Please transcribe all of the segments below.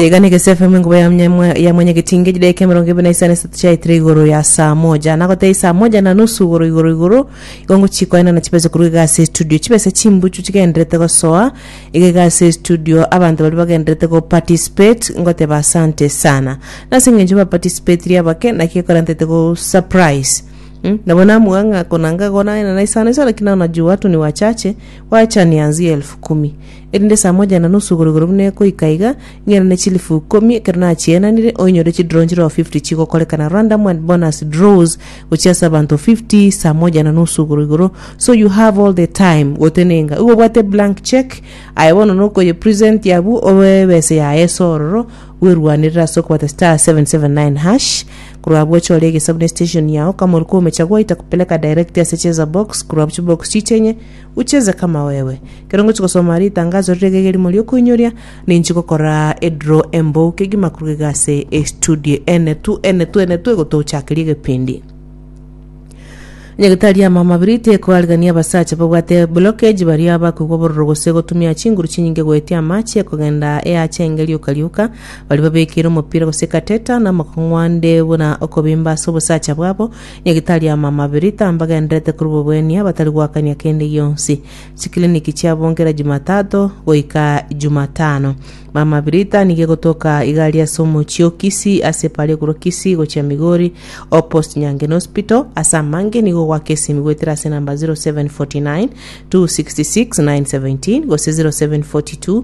Iga negese FM enkuba ya mnyamwa- ya mwenyegetinge chidaeka emerongo ebere na isano esato chiaetire igoro ya saa moja na gotee saa moja na nusu igoro igoro igoro igo ngochia koenana chibese korwa iga ase estudio chibese chimbuchu chigendererete gosoa iga iga ase estudio abanto baria bagendererete go participate ngoteba asante sana nase eng'encho ba participatiri abake naki gekora ntaete go surprise Mm, nabo namua ng'a konanga igo naenana isano isano lakini naona juu watu ni wachache wacha nianzie elfu kumi erinde esaa moja na nusu igoro-igoro buna ekoika iga, ing'erane chilifu ikomi ekero nachienanire, oinyore chidrone chireo 50 chigokorekana random and bonus draws gochia ase abanto 50 saa moja na nusu igoro-igoro, so you have all the time gotenenga. Igo obwate blank cheque, aye bono nokoye present abwo obe ebese yaye ase ororo, bwerwanerere ase okobwata *779#, korwa abwo chore egesabu ne station yao, kamori komecha gwaita kupeleka direct ase cheza box, korwa abwo chibox chichenye, Ucheze kama wewe. Kero ngochi gosoma ritangaso riria gegerimo riokoinyoria, ninchi gokora edraw embou kegima korugega ase estudio ene tu ene tu ene tu egotochakeria egepindi. Nyagetari ama amabiri tekoarigania abasacha babwate blockage baria bakoigwa bororo gose gotumia chinguru chinyinge goetia amache kogenda eacha enga rioka rioka baria babekeire omopira gose catheter na amakong'u ande buna okobimba ase obosacha bwabo Nyagitariama amabiri tambagenderete korwa boboenia batari goakania kende gionsi. Chikiriniki chiabonge era Jumatato goika Jumatano. Mama Birita nigo egotoka igari ase omochie o Kisii ase epara yo korwa Kisii gochia Migori opposite Nyangeni Hospital. Ase amange nigo ogoaka esimi goetera ase number 0749 266 917 gose 0742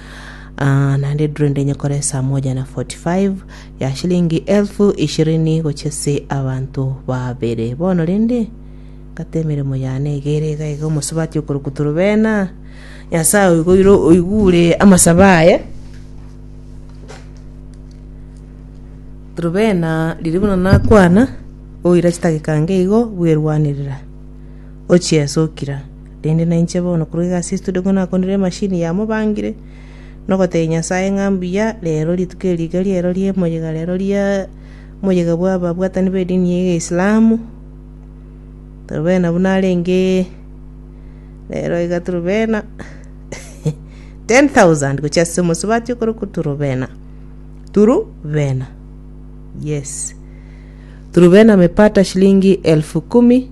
Ah, naende eduro ende nyekore esaa moja na 45 ya shilingi elfu ishirini gochia ase abanto babere bono rende ngate emeremo yane egere iga iga omosubati okorokwa torobena nyasaye oigoire oigure amasabo aye torobena riria buna nakwana oira chitageka nge igo bwerwanerera ochia ase okira Rende nainche bono korwa egasi estudio nigo nakonire emashini yamobangire, na ogotebia Nyasae ng'a mbuya, rero rituko eri iga riero ria emoyega rero ria moyega bwa ababwatani b'edini ya Islamu, torobena buna arenge rero iga torobena ten thousand gochia ase omosubati okorokwa turubena, turubena, yes, turubena amepata shilingi elfu kumi.